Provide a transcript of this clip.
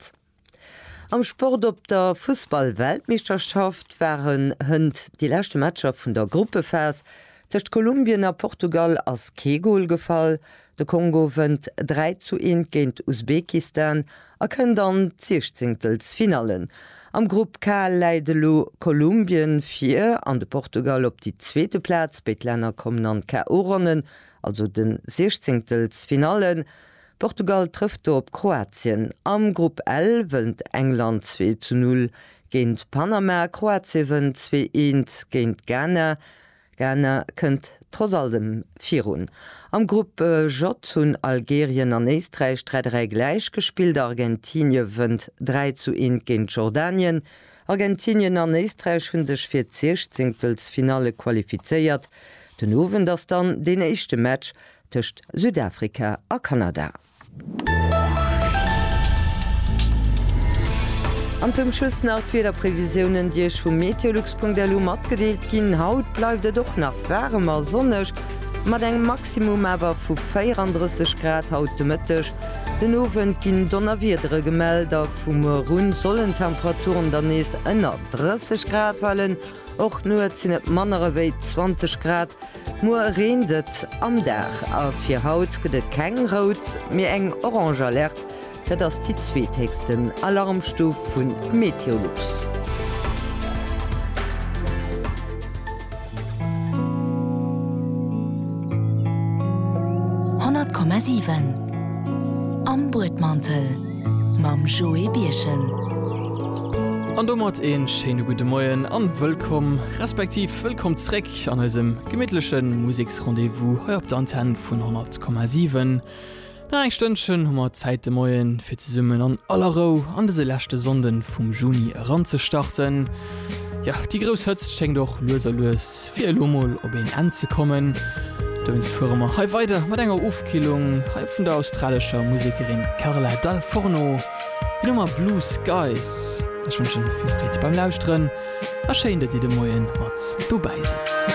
Sport. Am Sport Op der Fussball-Weltmeeschterschaft waren hënt déi leschte Matcher vun der Gruppephas. Tëscht Kolumbien a Portugal ass kee Gol gefall. De Kongo wënnt 3 zu 1 géint Usbekistan a kënnt an d'Siechzéngtelsfinalle. Am Grupp K läit elo Kolumbien vir an de Portugal op déi zweete Plaz. Béid Länner kommen an d'KO-Ronnen, also de Siechzéngtelsfinalle Portugal trëfft do op Kroatien. Am Grupp L wënnt England zwee zu null géint Panama, Kroatie wënnt zwee eent géint Ghana, Ghana kënnt trotz alldem virun. Am Grupp J hunn Algerien an Éisträich 3 3 gläich gespillt, Argentinie wënnt dräi zu eent géint Jordanien, Argentinien an Éisträich hunn sech fir d'Siechzéngtelsfinalle qualifizéiert. Den Owend ass dann deen éischte Match tëscht Südafrika a Kanada. An zum Schluss nach d'Wiederprevisiounen, déi Iech vu meteolux.lu matgedeelt ginn. Haut bleift et och nach waarem a sonneg, mat engem Maximum awer vu 34 Grad haut de Mëtteg. Den Owend ginn Donnerwiedere gemellt a vu muer un sollen d'Temperaturen dann nees ënner 30 Grad falen. Och nuets sinn et manner ewéi 20 Grad, muer reent et am Dag a fir haut gëtt et keng rout, mee eng orange Alerte. Dat ass déi zweethéchsten Alarmstuf vu Meteolux. Honnert Komma siwen am Buedmantel. mam Joé Birchen. An domat ee schéine gudde Moien a wëllkomm, respektiv wëllkomm zréck an eisem gemittleche Museksrendez-vous hei op der Antenn vun 100,7. Nach eng Stënnchen hu mer Zäit de Moien, fir zesummen an aller Rou an dëse leschte Sonnden vum Juni eranzestarten. Jo, déi grouss Hëtzt schéngt och lues a lues fir elo mol op een Enn ze kommen. Dowéinst fuere mer hei weider mat enger Ofkillung hei vun der australescher Musekerin Carla Dal Forno. Hir Nummer Blue Skies. Ech wënschen vill Freed beim Lauschteren a schéin, datt Dir de Moien mat dobäi sidd.